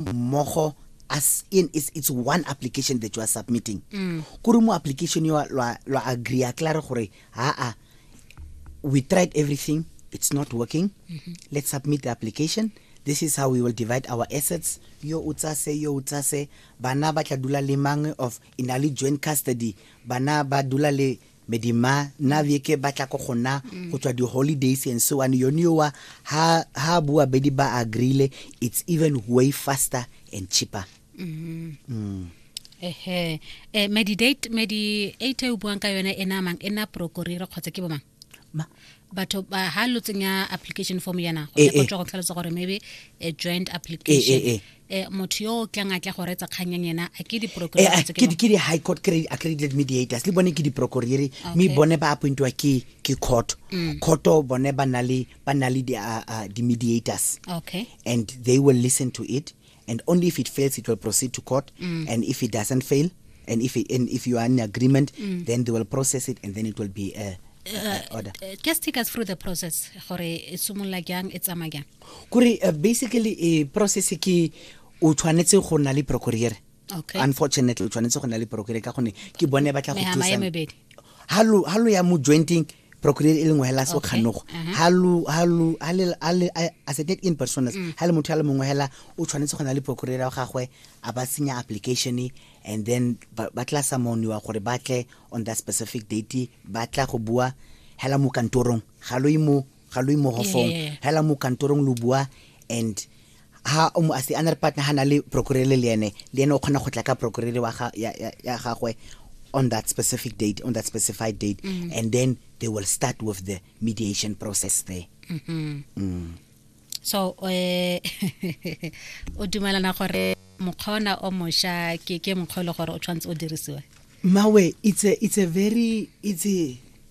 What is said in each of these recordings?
mmogo as in it's, it's one application that you are submitting mm. kore mo application yo lwa agree a klare gore aa we tried everything it's not working mm -hmm. let's submit the application this is how we will divide our assets yo o tsase yo o tsase bana ba tla dula le mang of in a joint custody bana ba dula le medima nna beke ba tla ko gona go tswa di-holidays and so one yone yowa ha ha bua bedi ba agreele it's even way faster and cheaper mm. Mm. ehe eh, medi date medi eight e o buang ka yone e namang e na prokorire kgotsa ke bomang batho ba ha lo tsenya application form yana go ya go tlhalosa gore maybe a joint application eh, motho yo o tlang a tla go retsa kgang yang ena a ke Eh, diprokurore ah, tse ke ke di- ke di high court cre- accredited mediators le bone ke diprokoriri mme Okay. bone ba appointiwa ke ke court courto bone ba na le ba na le di- ah, ah, di-mediators okay and they will listen to it and only if it fails it will proceed to court and if it doesn't fail and if it, and if you are in agreement then they will process it and then it will be a, a, a order Uh, just take us through the process gore e simolola jang e tsamaya jang kore uh, basically e process ke o tshwanetse go na le procurere okay. unfortunately o tshwanetse go na le procurere ka gone ke bone ba tla go thusa ha lo ya mo jointing procureur e leng wa hela so khanogo uh-huh. ha lu ha lu ha le ha le asset in persona mm. ha le motho ya le mongwe hela o tshwanetse go na le procureur wa gagwe a ba senya application and then ba tla sa moniwa gore ba tle on that specific date ba tla go bua hela mo kantorong ga lo imo ga lo imogo fong Yeah. hela mo kantorong lo bua and ha o mo ase another partner ha na le procurele le ene le ene o kgona go tla ka procurele wa ga ya, ya, ya gagwe on that specific date on that specified date Mm. and then they will start with the mediation process there so eh o dumelana gore mokgwa ona o mosha ke ke mokgwa e le gore o tshwanetse o dirisiwe mawe it's a it's a very it's a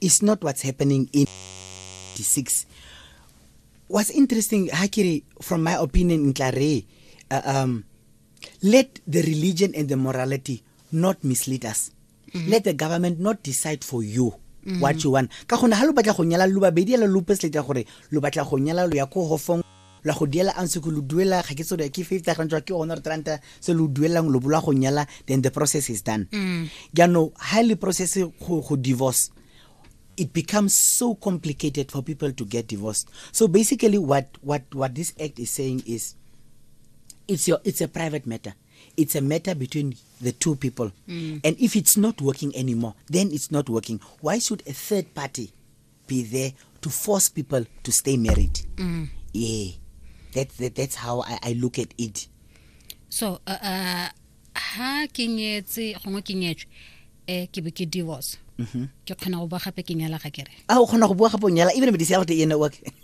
is not what's happening in 96 what's interesting ha kere from my opinion ntla re uh, um let the religion and the morality not mislead us mm -hmm. let the government not decide for you mm -hmm. what you want ka gone ha lo batla go nyala lo babedi la lo pesleta gore lo batla go nyala lo ya ko hofong la go diela ang se lo duela ga ke tsore ke fifty rand ke one ranta se lo duelang lo bola go nyala then the process is done mm. jaanong ga le process go go divorce it becomes so complicated for people to get divorced so basically what what what this act is saying is it's your it's a private matter it's a matter between the two people mm. and if it's not working anymore then it's not working why should a third party be there to force people to stay married mm. yeah that, that that's how I, I look at it so uh, uh, ha ke nyetse gongwe ke nyetswe eh ke be ke divorce mm-hmm. ke kgona go bua gape ke nyala ga kere a ah, o kgona go bua gape o nyala even medise ya gote ene wa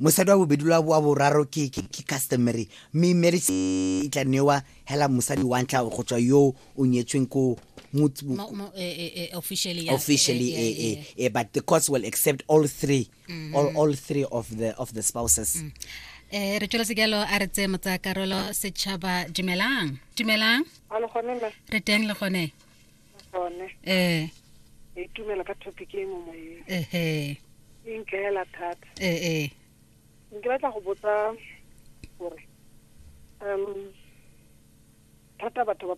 mosadi wa bobedi lwa wa boraro ke ke ke customary mme marriage e tla newa hela mosadi wa ntlha go tswa yo o nyetsweng ko motse- Mo- mo- eh, eh, eh, officially yes. officially Eh, eh, eh, eh, eh. eh, but the courts will accept all three all, all three of the of the spouses Eh, re tsweletse jalo a re tseye motsayakarolo setšhaba dumelang dumelang Alo gone me. re teng le gone tsone eh ka itumela ka topic e mo moyeng ehe e nkaela thata eh eh nke batla go botsa gore um thata batho ba